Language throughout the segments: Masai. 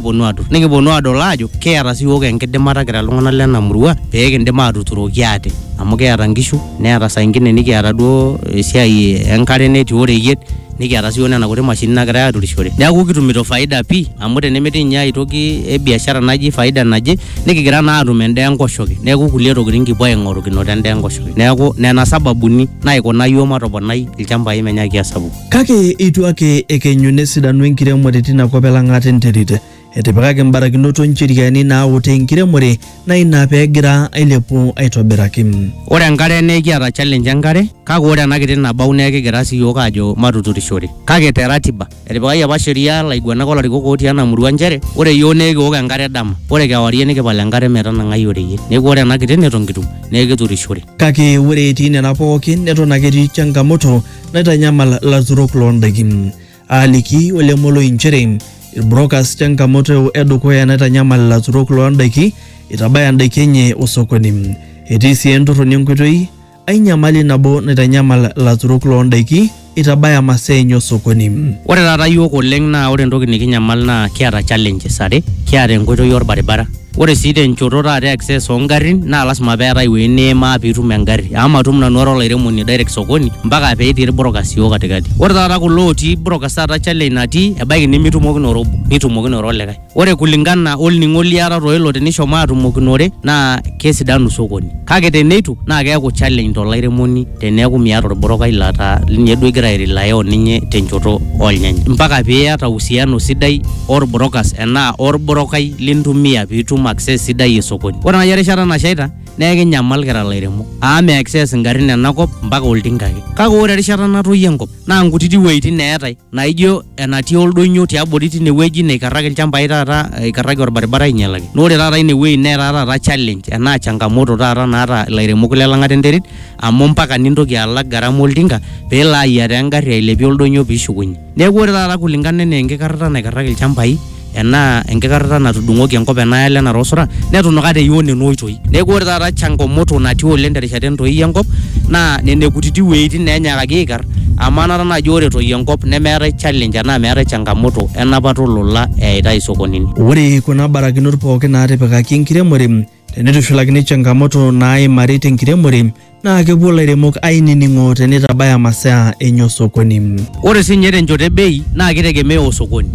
ponu atur nikiponu adol ajo kiata si yiok enkidimata kira iltung'anak lena murua pee kindim atuturoki ate amu kiata nkishu neeta saa ingine nikiata duo esiai enkare netii oreyiet nikiata si yiok nena kuti mashinini nagirae aturishore neeku kitumito faida pii amu tenemetii inye aetoki e biashara naji faida naje nikigira naa atum endaa enkoshoke neeku kulie tokitin kipuo aing'oru kinoto endaa enkoshoke neeku nena sababuni naikuna yiok matoponai ilchambai menyaaki asapuku. Kake eitu ake ekenyu nesidanu enkiremore tina kop elang'ata enterit. Etipikaki mbarakinot o ncheriani naautaa enkiremore naa ina pee egira ailepu aitobiraki. Ore enkare naa ekiata challenge enkare kake ore ena kiti nabau naa ekigira sii iyiook aajo matuturishore kake te ratiba. Etipikaki apa sheria laiguanak o larikok ootii ena murua nchere ore iyiook naa ekiok enkare dama ore kewarie nikipal enkare metanang'ai oreyiet. Neeku ore ena kiti neton kitum naa ekiturishore. Kake ore etii nena pooki neton ake etii changamoto naitanyamal ilaturok loo ndaikin. Aaliki Ole Moloi nchere ilbrokas changamoto edukuya naitanyamal ilaturok loo ndaiki itabaya ndaiki enye osokoni. Etii sii entorroni enkoitoi ai nyamali nabo naitanyamal ilaturok loo ndaiki itabaya masaa enye osokoni. Ore taata iyiook oleng naa ore entoki nikinyamal naa kiata challenges are, kiata enkoitoi olbaribara Ore sii tenchoto taata access ongarrin naa lasima peetae ewueji niimaa piitum engarri amu matum nanu ara olairemoni direct sokoni mpaka petii ilbrokas iyoo katikati. Ore taata kulo otii brokas taata challenge natii ebaiki nimitumokinore obo nitumokinore olikae. Ore kulingana olning'o liatata o ilo tinishomo atumokinore naa kesidanu sokoni kake teneitu naa keeku challenge to lairemoni. Teneaku miata olbrokai laa ta linye duo igira airelaya o ninye tenchoto oo lnyanya, mpaka pee iata uhusiano sidai o lbrokas enaa o lbrokai lintumia pee itum access sidai e sokoni. Ore naaji erishata nashaita naa ekinyamal kira ilairemok amu mi access ingarrin ena kop mpaka oltinka ake. Kake ore erishata natoyio enkop naa nkutiti wueitin eetae. naijo enatii oldonyo tiabori tine wueji neikarraki ilchambai taata eikarraki orbaribara ainyalaki naa ore taata ine wueji netaa taata challenge enaa changamoto taata naata ilairemok le lang'ata enterit amu mpaka nintoki alak gharama oltinka peelo ayiataa engarri ailepie oldonyo piishukunyie neeku ore taata kulingana enaa enkikarrata naikarraki ilchambai enaa enkikarrata natudung'oki enkop enaalo enara osura netunuka te yoo nena oitoi. Neeku ore taata changamoto natii oleng terishata entoii enkop naa nena kutiti wueitin naa enyaakaki aikar amu anata naaji ore etoyio enkop nemeetae challenge enaa meetae changamoto enapata olola eyaitae isokonini. Ore kuna barakinot pooki naatipikaki enkiremore Teneitushulakini changamoto naaimari tenkiremore naa kepuo lairemok ainining'o teneitabaya masaa enye osokoni. Ore sii ninye tenchoto e bei naa keitegemea osokoni.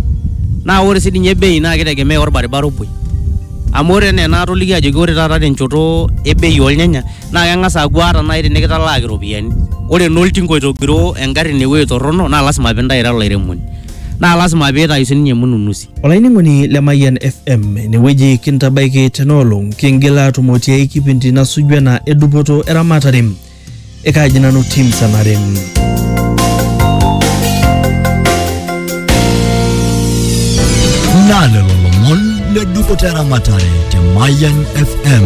Naa ore sii ninye bei naa keitegemea olbaribara opuoi. Amu ore enaa enaatolikio ajoki ore taata tenchoto e bei oolnyanya naa keng'as aaku ata nai tinikitalaaki iropiani ore naa oltinka oitogiroo engarri inewuei torrono naa lasima piintayu ira olairemoni. Naa lasima piitayu sininye mununusi. Olainining'oni le Mayian FM inewueji kintabaiki tenaolong kingila atumo tiai kipindi nasuju ena edupoto eramatare ekaaji nanu tim sanare. Naa lelo lomon le dupoto eramatare te Mayian FM.